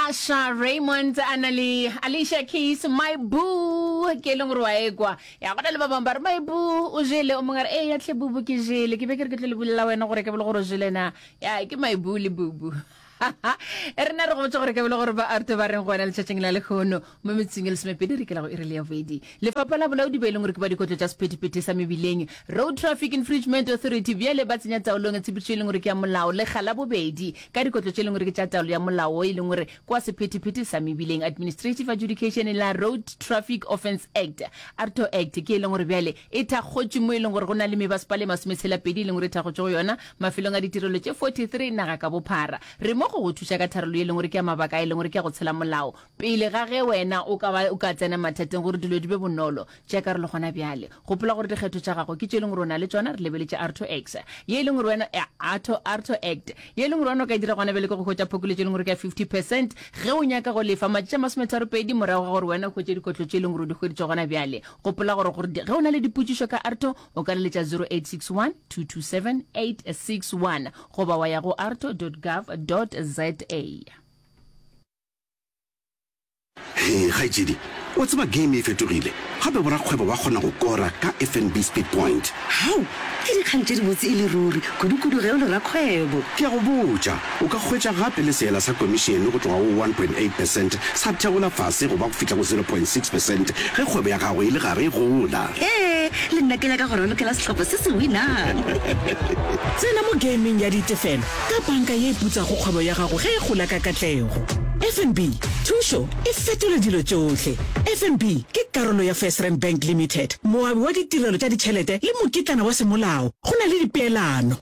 Asha Raymond a na le Alicia Keys my boo ke e leng gore wa ekwa ya gona le ba bangwe ba re my boo o jele o mongwe a re ee ya tlhe bubu ke jele ke be ke re ke tlo le bolela wena gore ke bele gore o jele na ya ke my boo le bubu e rena re gotse gore ke bele gore ba arte ba reng go wena letšatšing la lekgono mo metseng e lesomepedi re kelago e re le ya bobedi lefapha la bolaodi ba e leng gore ke ba dikotlo tša sephethephethe sa mebileng road traffic infringement authority bjale ba tsenya taolong tshepedišo e leng gore ke ya molao lekga la bobedi ka dikotlo tše e leng gore ke tša taolo ya molao e leng gore kwa sephethephethe sa mebileng administrative adjudication la road traffic offence act arto act ke e leng gore bjale e thakgotše mo e leng gore go na le mebasepala e masometshela-pedi e leng gore e thakgotše go yona mafelong a ditirelo tše 43 naga ka bophara re mo go go thuša ka tharollo e leng gore ke ya mabaka a e leng gore ke ya go tshela molao Pele ga ge wena o ka ba o ka tsena mathateng gore dilo di be bonolo, tšea karolo gona bjale. Gopola gore dikgetho tša gago ke tše e leng gore o na le tšona, re lebeletše Arto Act ye e leng gore wena, Arto, Arto Act, ye e leng gore wena o ka e dira gona bjale ke go hwetša phokoletšo e leng gore ke ya 50 percent ge o nyaka go lefa matšatši a masometharopedi morago ga gore wena o hwetše dikotlo tše e leng gore o di hweditše gona bjale. Gopola gore gore ge o na le dipotšišo ka Arto o ka leletša 0861 227 861 goba wa ya go arto dot gov dot za. Hee kgaetšedi, wa tseba game e fetogile, gape borakgwebo ba kgona go kora ka FNB Speed Point. Hau! Ke dikgang tše dibotse e le ruri, kudukudu ge o le rakgwebo. Ke a go botša, o ka hwetša gape le seela sa komišene go tloga go one point eight percent sa theola fase go ba go fihla go zero point six percent ge kgwebo ya gago e le gare e gola. Hee, le nna ke nyaka go ralokela sehlopha se se winang. Tsena mo gaming ya ditefelo. ka banka ye e putsago kgwebo ya gago ge e gola ka katlego. FNB, thušo e fetola dilo tšohle. FNB ke karolo ya FirstRand Bank Limited, moabi wa ditirelo tša ditšhelete le mokitlana wa semolao go na le dipeelano.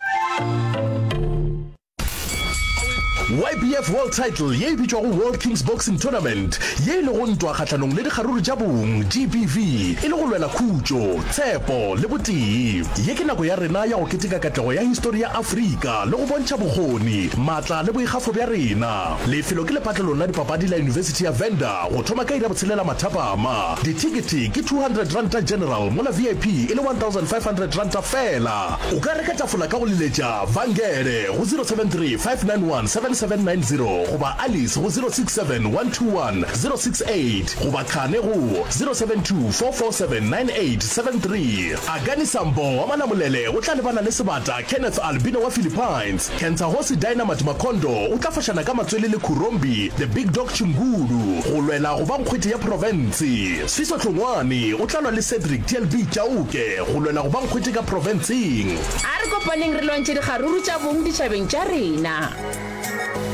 YBF World Title ye e bitšwago World Kings Boxing Tournament, ye e lego ntwa kgahlanong le dikgaruru tša bong, GBV, e le go lwela khutšo, tshepo le botee. Ye ke nako ya rena ya go keteka katlego ya histori ya Afrika. ka le go bontšha bokgoni, matla le boikgafo bja rena. Lefelo ke lepatlelong la dipapadi la Yunibesithi ya Venda go thoma ka iri ya botshelela mathapama. Dithekete ke R200 general mola VIP e le R1,500 fela. O ka reka tafola ka go leletša Vangele go 0735917790 goba Alice go 0671210688 goba Khane go 0724479873. Akani Sambo wa Malamulele o tla lebana le sebata Kenneth Albino wa Philippines, Kentsagosi Dynamite Makhondo o tla fošana ka matswele le Khurombi The Big Dog Chingulu go lwela go ba nkgwete ya profense. Sifiso Tlongwane o tla lwa le Cedric TLB Chauke go lwela go ba nkgwete ka profenseng. A re kopaneng re lwantšhe dikgaruru tša bong ditšhabeng tša rena.